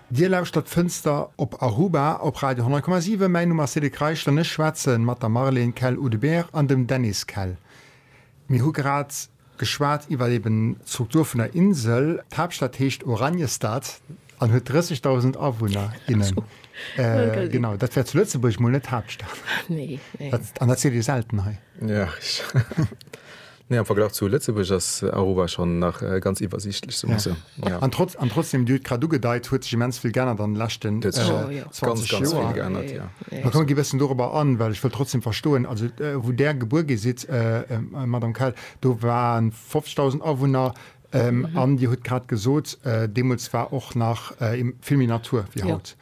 Dir lauschtert d'Fënster op Aruba op Radio 10,7. Mäin Numm ass Cedric Reichel an ech schwätze mat der Marlène Kell-Oudebert an dem Dennis Kell. Mir hu grad geschwat iwwer eben d'Struktur vun der Insel. D'Haaptstad heescht Oranjestad an huet 30.000 Awunner, innen. Genau, dat wär zu Lëtzebuerg mol net d'Haaptstad. An dat seet ee selten hei. Nee, am Verglach zu Lëtzebuerg ass Aruba schonn nach ganz iwwersiichtlech, soe mer sou. An trotzdeem, Dir hutt et grad ugedeit, huet sech immens vill geännert an de leschten 20 Joer. Mä komm, gi bëssen dorobber an, well ech wëll trotzdeem verstoen, also wou Där gebuer gi sidd, Madame Keil, do ware 50.000 Awunner an Dir hutt grad gesot, deemools war och nach vill méi Natur wéi haut.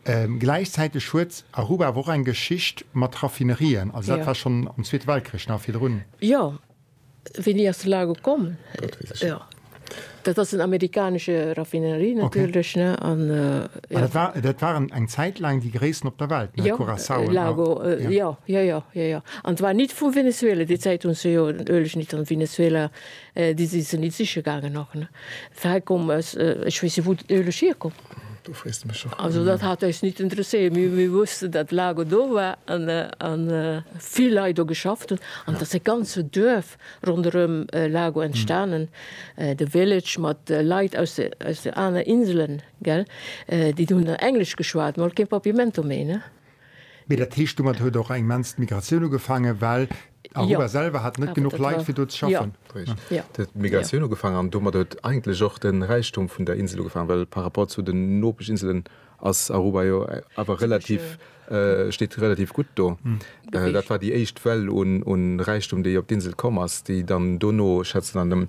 Gläichzäiteg huet Aruba awer och eng Geschicht mat Raffinerien. Also dat war schonn am Zweete Weltkrich nach virdrun. Jo, wéini ass de Largo komm? Dat weess ech net. Dat ass en amerikanesche Raffinerie natierlech. Dat waren eng Zäit laang déi gréissten op der Welt, no Curaçao. Largo, jo, jo, jo, jo, jo. An et war nit vu Venezuela. Déi Zäit hunn se jo den Ueleg nit an Venezuela, déi si se nit siche gaangen och. Hei koum, ech weess jo wou den Ueleg hierkoum. Also dat hat eis nit interesséiert. Mee mir wussten, datt d'Lago do war a vill Leit do geschafft hunn an datt e ganze Duerf ronderëm Lago entstanen, de Village mat Leit aus de aner Inselen, déi hunn dann Englesch geschwat, mer hunn kee Papiamento méi. Mee dat heescht, domat huet och eng immens d'Migratioun ugefaangen, well Aruba selwer hat net genuch Leit, fir do ze schaffen. Richteg, do huet d'Migratioun ugefaangen an domat huet eigentlech och de Räichtum vun der Insel ugefaangen, well par rapport zu den Nopesch-Inselen ass Aruba jo awer relativ, steet relativ gutt do. Dat war déi éischt Well un Räichtum, déi op d'Insel komm ass, déi dann dono, schätzt een, an dem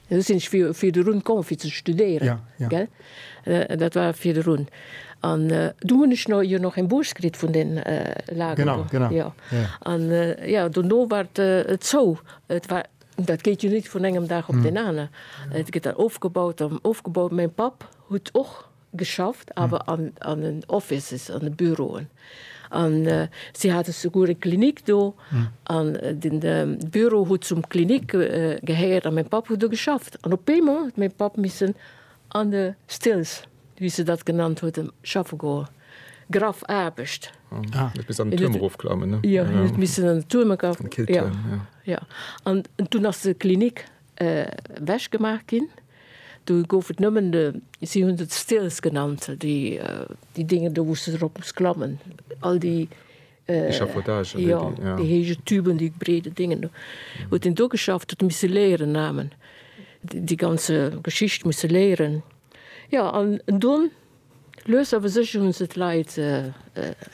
Ech sinn virdrun komm fir ze studéieren. Dat war virdrun. An dunn hunn ech jo nach eng Bourse kritt vun den Lagen. An jo, dono war et zou. Dat geet jo net vun engem Dag op den anere. Et gëtt dann ofgebaut an ofgebaut. Mäi Papp huet och. geschafft, awer an, an den Offices, an de Büroen. An si hate souguer eng Klinik do, an den Büro huet zum Klinik gehéiert, a mäi Papp huet do geschafft. An op eemol huet mäi Papp missen an de Stills, wéi se dat genannt huet, schaffe goen. Graff Aarbecht. Huet missen an den Tuerm erofklammen, ne? Jo, en huet missen an den Tuerm erofklammen. An den Killtuerm, jo. Jo. An dunn ass de Klinik Ewech gemaach ginn. Do gouf et nëmmen de, si hunn se d'Stills genannt, déi Dinge do, wou s de drop muss klammen, all déi, Echafaudagen, wéi déi, jo. Déi héije Tüben, déi breede Dingen do. Huet een do geschafft, huet misse léieren namen, déi ganze Geschicht musse léieren. Jo, an dunn, lues awer sécher, hu se d'Leit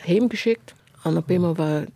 heemgeschéckt an op eemol war.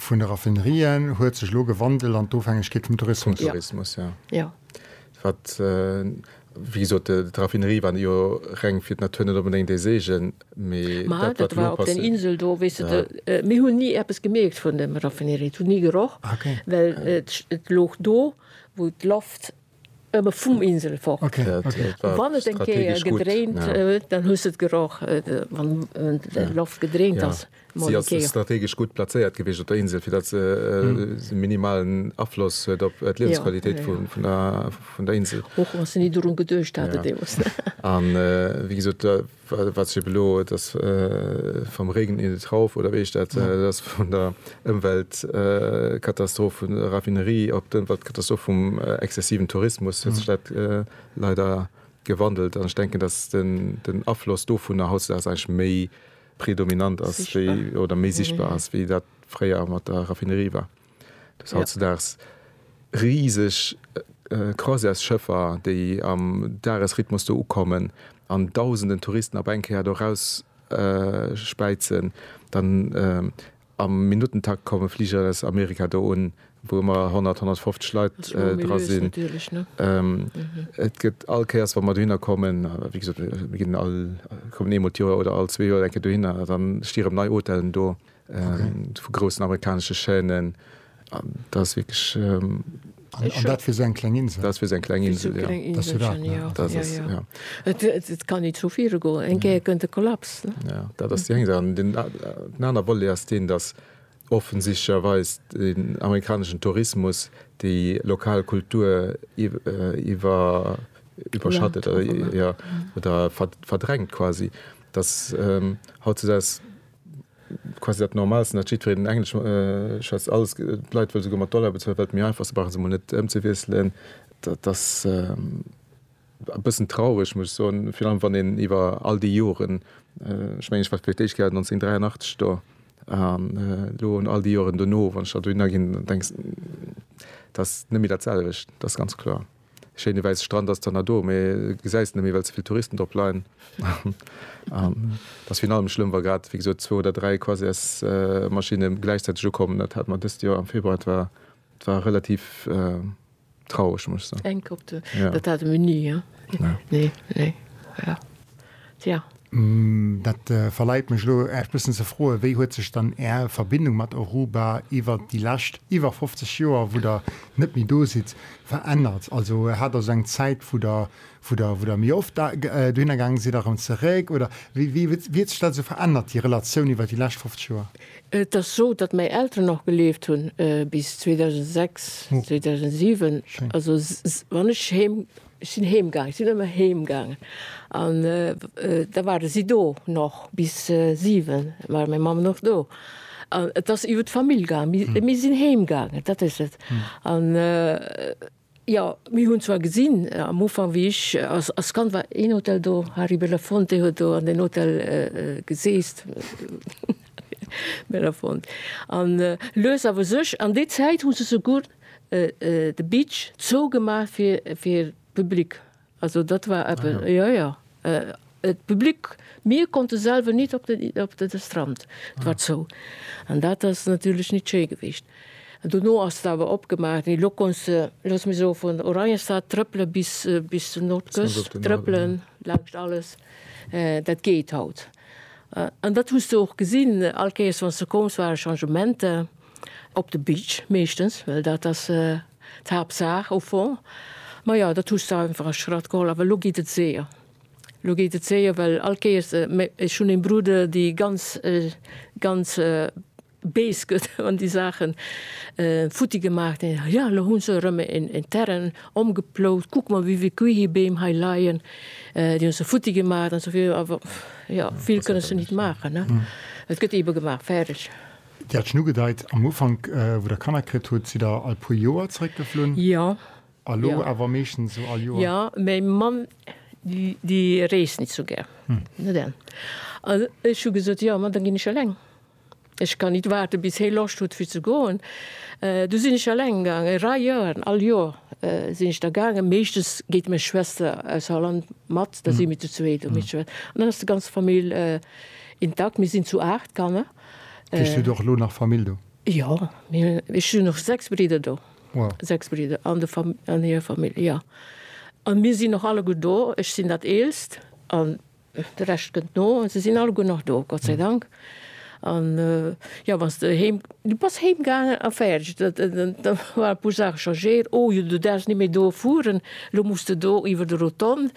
vun de Raffinerien huet sech elo gewandelt an d'Ofhängegkeet vum Tourismus. Vum Tourismus, jo. Jo. Wat, wéi gesot, d'Raffinerie war jo reng fir d'Natur net onbedéngt ee Seegen, mee dat, wat elo passiert. Ma dat war op där Insel do, weess de, mir hunn ni eppes gemierkt vun dem Raffinerie. Et huet ni geroch. Ah, okay. Well et looch do, wou d'Loft. Ëmmer vum Insel fort. Wann et eng Kéier gedréint huet, dann hues de et geroch, wann d'Loft gedréint ass. Si ass strategesch gutt plazéiert gewiescht op der Insel, fir datt se e minimalen Afloss huet op d'Liewensqualitéit vun der Insel. Och wa se ni dorun geduecht haten deemools. Wéi gesot. Wat schiet elo? Et ass Vom Regen in den Trauf, oder wéi heescht dat? Et ass vun der Ëmweltkatastroph vun der Raffinerie op d'Ëmweltkatastroph vum exzessiven Tourismus huet sech dat leider gewandelt. An ech denken, datt den Afloss dovunner hautdesdaags eigentlech méi predominant ass wéi, oder méi sichtbar ass, wéi dat fréier mat der Raffinerie war. Dass hautzedaags riseg Croisièresschëffer, déi am Dagesrhythmus do ukommen an dausenden Touristen op eng Kéier do erausspäizen, dann am Minuttentakt komme Fliger aus Amerika do un, wou ëmmer 100, 150 Leit dra sinn. Et gëtt all Kéiers, wa mer dohinner kommen, wéi gesot, mir kommen eemol d'Joer oder all zwee Joer eng Kéier dohinner, da sti rëm nei Hotellen do. vu groussen amerikanesche Chaînen an dat ass wierklech. An dat fir esou eng kleng Insel? Dat ass fir esou eng kleng Insel, jo. Dat ass, jo. Et kann ni zu viru goen, eng Kéier kënnt e Kollaps. Jo, dat ass déi eng Saach. Den anere Volet ass deen, datt offensichtlecherweis den amerikaneschen Tourismus déi lokal Kultur iwwerschattet, jo, oder verdrängt quasi, datt hautzudeis. quasi dat Normalsten, datt jiddwereen en Englesch schwätzt, alles, d'Leit wëlle souguer mat Dollar bezuelen, well et méi einfach ass, se brauche se emol net ëmzewiesselen. Dat ass e bëssen traureg, muss ech soen, virun allem wann een iwwer all déi Joren, ech mengen, ech war fir d'éischt Kéier 1983 do, an elo an all déi Joren dono, wann ech da dohinner ginn, da denkst, dat ass net méi dat selwecht, dat ass ganz kloer. Schéine wäisse Strand ass dann do, mee gesäis en net méi, well ze vill Touristen drop leien. An et ass virun allem schlëmm, wa grad, wéi gesot, zwou oder dräi Croisièresmaschinne gläichzäiteg ukommen. Dat hat mer dëst Joer am Februar, et war, et war relativ traureg, muss ech soen. Enk op de, dat hate mir ni, nee, nee, ja. Tja. Dat verleit mech elo Äech bëssen ze froen, wéi huet sech dann Är Verbindung mat Aruba iwwer déi lescht iwwer 50 Joer, wou Der net méi do sidd, verännert? Also hat Der sou eng Zäit, wou Der wou Der wou Der méi oft da dohinner gaangen sidd a rëm zeréck? Oder wéi wéi huet wéi huet sech dat sou verännert, déi Relatioun iwwer déi lescht 50 Joer? Et ass sou, datt mäi Elteren och gelieft hunn bis 2006, 2007. Schéin. Also s s wann ech heem Ech sinn heem gaangen, ech sinn ëmmer heem gaangen an da ware si do nach bis siwen, da war meng Mamm nach do an et ass iwwer d'Famill gaangen. Mir sinn heem gaangen, dat ass et an jo mir hunn zwar gesinn am Ufank wéi ech als Kand war een Hotel do, Harry Belafonte huet do an den Hotel geseest Belafonte an lues awer sech an déi Zäit hu se souguer de Beach zou gemaach fir fir d'Public. Also dat war eppe. Ah, ja. Ja, ja. D'Public, mir konnte selwer nit op de op de de Strand. Et war ah. zou. An dat ass natierlech nit schéi gewicht. An dono ass et awer opgemaach ginn. Lo konns de, looss mech soe, vun Oranjestad trëppele bis bis zur Nordküst trëppelen, laanscht alles. Dat geet haut. An dat hues de och gesinn, all Kéiers wann s de koums, ware Changementer. Op de Beach meeschtens, well dat ass d'Haaptsaach au fond. Ma jo, dat hues de einfach a Schratt geholl. Awer elo geet et séier. Elo geet et séier, well all Kéiers, mä ech hunn eng Brude, déi ganz, ganz bees gëtt, wann déi Saachen futti gemaach ginn. Jo, elo hu se erëm en Terrain ëmgeplout. Kuck mol, wéi vill Kiwibeem hei leien. Déi hu se futti gemaach an esou virun. Awer jo, vill kënne se nit maachen, ne? Et gëtt eebe gemaach, fäerdeg. Dir hat schon ugedeit am Ufank, wou der Kanner kritt hutt, sidd der all puer Joer zeréckgeflunn. Jo. A lo awer meeschtens esou all Joer? Jo, mäi Mann déi reest net esou gär. An ech hu gesot, jo, ma da ginn ech eleng. Ech kann nit waarde bis hee Loscht huet fir ze goen. Du sinn ech eleng gaangen, e Rei Joer, all Joer sinn ech da gaangen. Meeschtens geet meng Schwester aus Holland mat, da si mir zu zweet. An dann ass déi ganz Famill intakt. Mir sinn zu 8 Kanner. Kriss du och elo nach Famill do? Jo, ech hunn och 6 Bridder do. Wow. 6 Bridder an de Fam, an hir Famill, jo. An mir sinn och alleguer do. Ech sinn dat Eelst an de Rescht kënnt no. An se sinn alleguer nach do, Gott sei Dank. An, jo, wann s de heem, du bass heem gaangen a fäerdeg. Dat, da waren e puer Saache changéiert. Oh jo, du däerfs net méi do fueren, elo muss de do iwwer de Rotonde,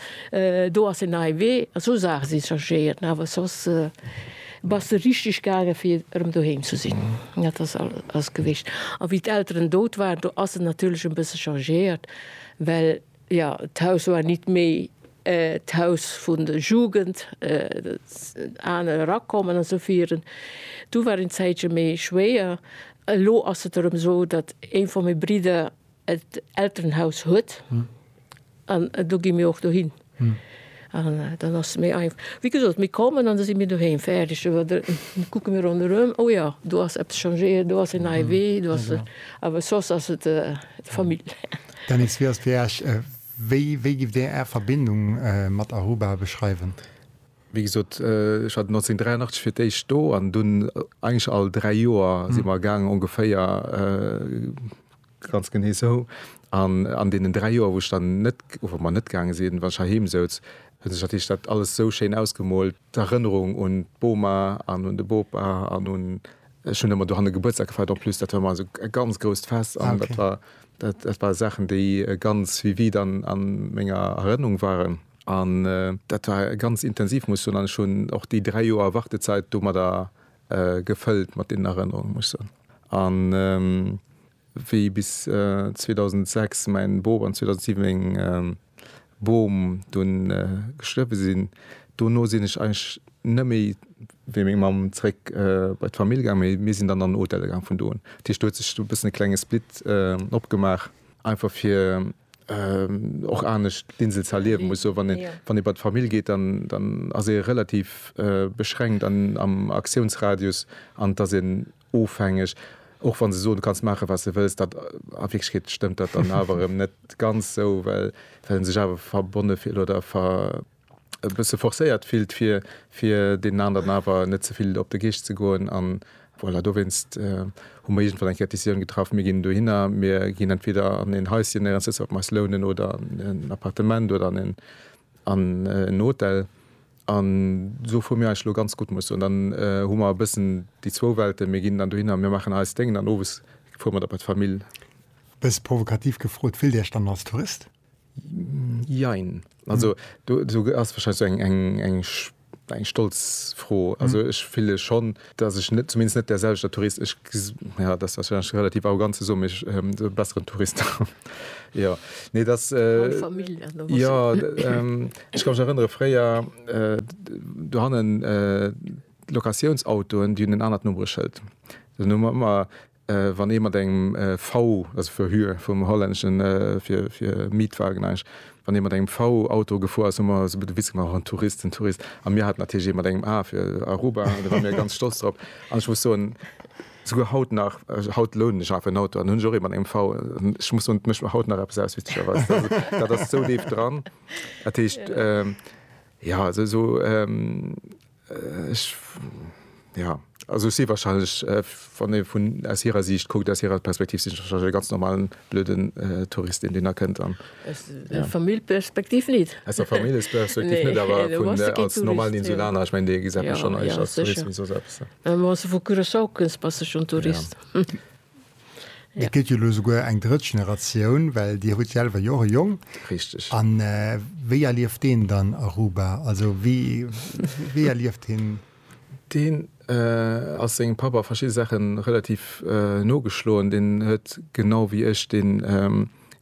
do ass en neie Wee. Esou Saache si changéiert, mä awer soss, Bass de richteg gaangen, fir erëm doheem ze sinn? Dat ass alles gewicht. A wéi d'Elteren dout waren, do ass et natierlech e bësse changéiert, well, jo, d'Haus war nit méi d'Haus vun der Jugend, aner erakommen a sou viren. Du war en Zäitche méi schwéier. Elo ass et erëm esou, datt ee vu menge Bridder Elternhaus huet an do gi mir och dohin an dann ass se méi einfach. Wéi gesot, mir kommen an da si mir doheem, fäerdeg. Oder da kucke mir ronderëm, oh jo, do ass eppes changéiert, do ass en neie Wee, do ass. Awer soss ass et d'Famill. Dennis, wéi ass fir Iech, wéi, wéi giff Dir Är Verbindung mat Aruba beschreiwen? Wéi gesot, ech war 1983 fir d'éischt do an dunn eigentlech all dräi Joer si mer gaangen, ongeféier Ganz genee esou. An an deenen dräi Joer, wou ech dann net, wou mer net gaange sinn, wann ech heiheem souz, hunn sech natierlech dat alles esou schéin ausgemoolt, d'Erënnerung un d'Boma an un de Bopa an un, ech hunn ëmmer dohanne Gebuertsdag gefeiert en plus, dat war ëmmer esou e ganz grousst Fest an dat war, dat dat ware Saachen, déi ganz vivide an a menger Erënnung waren. An dat war ganz intensiv, muss ech soen. An ech hunn och déi dräi Joer Wartezäit domadder Gefëllt mat deenen Erënnerungen, muss soen. An wéi bis 2006 mäin Boob an 2007 meng Bom dunn gestuerwe sinn, dono sinn ech eigentlech net méi wéi meng Mamm zeréck bei d'Famill gaang, mee mir sinn dann an en Hotel gaang vun do un. Dat heescht, do huet sech e bëssen e klenge Split opgemaach, einfach fir och anescht d'Insel ze erliewen muss. Wann ee bei d'Famill geet, dann ass ee relativ beschränkt am Aktiounsradius an et ass een ofhängeg, och wa se soen, du kanns maache wat s de wëlls. A Wierklechkeet stëmmt dat dann awer erëm net ganz esou, well e sech awer verbonne fillt oder e bësse forcéiert fillt, fir, fir deenen aneren awer net ze vill op de Geescht ze goen. An voilà, dowéinst hu mer iergendwann eng Kéier d'Decisioun getraff, mir ginn dohinner, mir ginn entweder an en Haischen néierens dëst, wat mer eis lounen, oder an en Appartement oder an en, an en Hotel. An do fu mir eis elo ganz gutt, muss ech soen. Dann hu mer e bëssen déi zwou Welten, mir ginn dann dohinner, mir maachen eist Déngen an owes fuere mer da bei d'Famill. E bësse provokativ gefrot, Fillt Dir Iech dann als Tourist? Jein. Also do do ass wahrscheinlech so eng eng eng eng stolz Fro. Also ech fille schonn, datt ech net zumindest net därselwechter Tourist ech ja dat ass wahrscheinlech relativ arrogant ze soen, mee ech e besseren Tourist jo nee datt jo ech ka mech erënnere fréier dohannen d'Locatiounsautoen déi hunn en anert Nummbereschëld. Dunn hu mer ëmmer Wann ee mat engem V, also fir Hue vum Hollännesche fir Mietwagen eigentlech, wann ee mat engem V-Auto gefuer ass, hu mer esou e puer de Witz gemaach, en Tourist, en Tourist. A mir haten natierlech ee mat engem A fir Aruba, do ware mir ganz stolz drop. An ech muss soen, souguer haut nach, haut lounen ech nach en Auto an hunn ech och ee mat engem V. Ech muss soen, et mécht mer haut nach eppes aus, witzegerweis. Dat ass esou deef dran. Dat heescht, jo, also esou. Ech, jo. Also ech si wahrscheinlech, wann ee vun, aus hirer Siicht kuckt, aus hirer Perspektiv, sinn ech wahrscheinlech e ganz normalen, blöden Tourist, deen deen erkennt an, jo. Aus der Famillperspektiv nit. Aus der Famillesperspektiv nit, awer vun, als normalen Insulaner, ech mengen, dee gesäit mech schonn eischt als Tourist wéi soss eppes. Mä wann s de vu Curaçao kënns, bass de schonn Tourist. Jo. Et gëtt jo elo souguer eng drëtt Generatioun, well Dir hutt selwer jo och e Jong. Richteg. A wéi erlieft deen dann Aruba? Also wéi erlieft hien? Deen ass sengem Papp a verschidde Saache relativ nogeschloen. Deen huet genau wéi ech dee.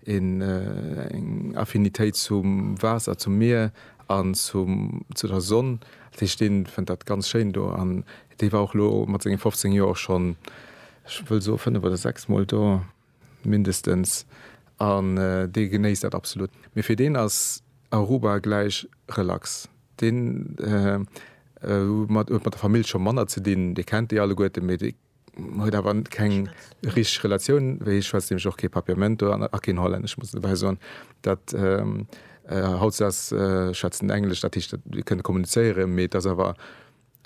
een eng Affinitéit zum Waasser, zum Mier an zum zu der Sonn, dat heescht deen fënnt dat ganz schéin do an dee war och lo mat senge 15 Joer och schonn ech wëll soe 5 oder 6 mol do mindestens an dee genéisst dat absolut. Mee fir deen ass Aruba gläich relax, deen huet mat der Famill scho manner ze dinn, dee kennt déi alleguerte mee dee Huet awer keng richteg Relatioun, wéi hie schwätzt, nämlech och kee Papiamento an a keen Hollännesch. Ech muss dobäi soen, dat hautdesdaags schwätzt en Englesch, dat heescht, et kënnt kommunizéieren, mee et ass awer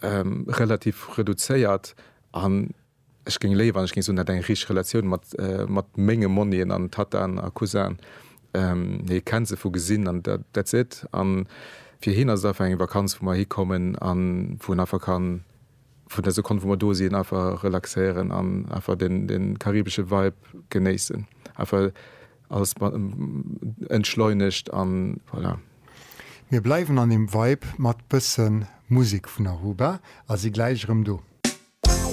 relativ reduzéiert an ech géing léiwer, wann ech géing soen, et hätt eng richteg Relatioun mat menge Monnien an Tattaen a Cousin. Hie kennt se vu gesinn an that's it. A fir hien ass et einfach eng Vakanz, wou mer hikommen a wou en einfach kann vun der Sekonn wou mer do sinn einfach relaxéieren an einfach den, den karibesche Vibe genéissen. Einfach alles entschleunegt an voilà. Mir bleiwen an dem Vibe mat bëssen Musik vun Aruba a si gläich erëm do.